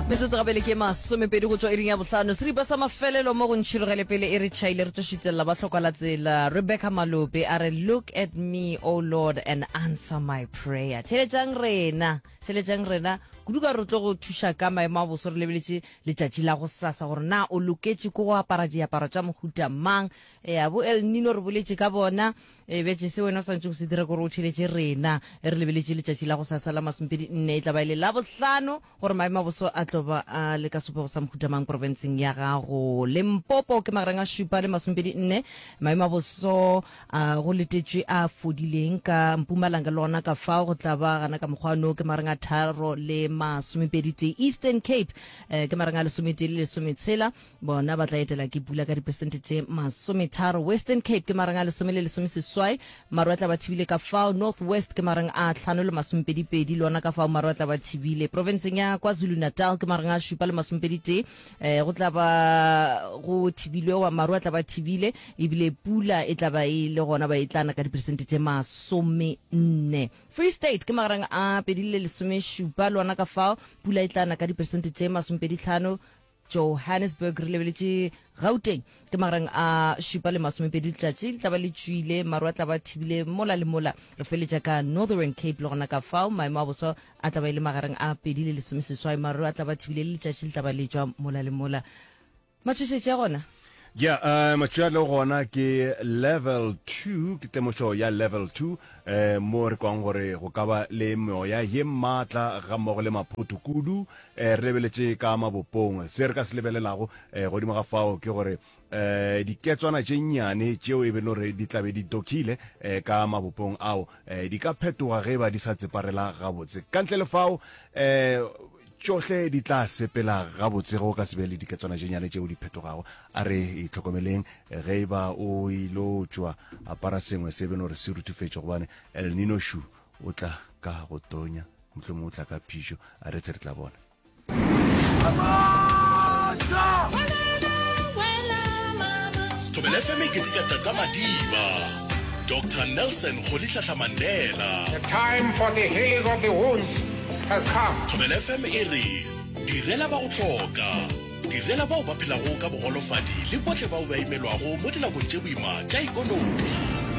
Metsotso gabele ke masomepedi go tšwa iring ya bohlano. Seripa sa mafelelo mo go ntšhirogele pele e re tšhaile re tlo šitelela ba hlokwala tsela. Rebecca Malope a re look at me o oh Lord and answer my prayer. Theletšang rena, theletšang rena kudu ka re tlo go thuša ka maemo a boso re lebeletše letšatši la go sasa gore na o loketše ko go apara diaparo tša mohuta mang. E a bo El Nino re boletše ka bona e betše se wena o swantše go se dira gore o theletše rena re lebeletše letšatši la go sasa la masomepedi nne e tla ba e le la bohlano. Gore maemo a boso a tlo ba a le ka sebopego sa mohuta mang porofenseng ya gago Limpopo ke magareng a šupa le masomepedi nne. Maemo a boso a go letetšwe a fodileng ka Mpumalanga le gona ka fao go tla ba gana ka mokgwa no ke magareng a tharo le masomepedi tee. Eastern Cape eh, ke magareng a lesometee le lesometshela. bona ba tla etela ke pula ka dipersente tše masometharo western cape ke marang a lesome le lesome seswai maru a tla ba thibile ka fao north west ke marang a tlhano le masomepedipedi lona ka fao maru a tla ba thibile provinceng ya kwazulu natal ke marang a šupa le masomepeditee um go tla ba go thibilwe wa maru a tla ba thibile ebile pula e tla ba e le gona ba e tlana ka dipersente tše masome nne free state ke magarang a pedi le lesome šupa lona ka fao pula e tlana ka dipersente tše masomepedi tlhano Johannesburg re lebeletše Gauteng ke magareng a šupa le masomepedi letšatši le tla ba le tšwile maru a tla ba thibile mola le mola re feletša ka Northern Cape le gona ka fao maemo a boso a tla ba e le magareng a pedi le lesomeseswai maru a tla ba thibile le letšatši le tla ba letšwa mola le mola matšhošetše gona Ja, eh, matšwi a tlago gona ke level two ke temošo ya level two eh, mo re kwang gore go ka ba le meoya ye maatla ga mmogo le maphoto kudu eh, re lebeletše ka mabopong se re ka se lebelelago eh, godimo ga fao ke gore eh, diketswana tše nnyane tšeo e belo re di tlabe di dokile eh, ka mabopong ao eh, di ka phetoga ge ba di sa tseparela gabotse ka ntle le fao eh, Tšohle di tla sepela gabotse ge o ka se be le diketswana tše nyane tšeo di phetogago. A re itlhokomeleng ge e ba o ilo tšwa. Apara sengwe se e beno re se ruthufetše gobane El Nino šu o tla ka go tonya, mohlomongwe o tla ka phišo. A retse re tla bona. Thobela FM e keteka Tata Madiba. Doctor Nelson Rolihlahla Mandela. The time for the healing of the wounds has come. Thobela FM e re, Direla ba go hloka. Direla bao ba phelago ka bogolofadi le bohle bao ba imelwago mo dinakong tše boima tša ikonomi.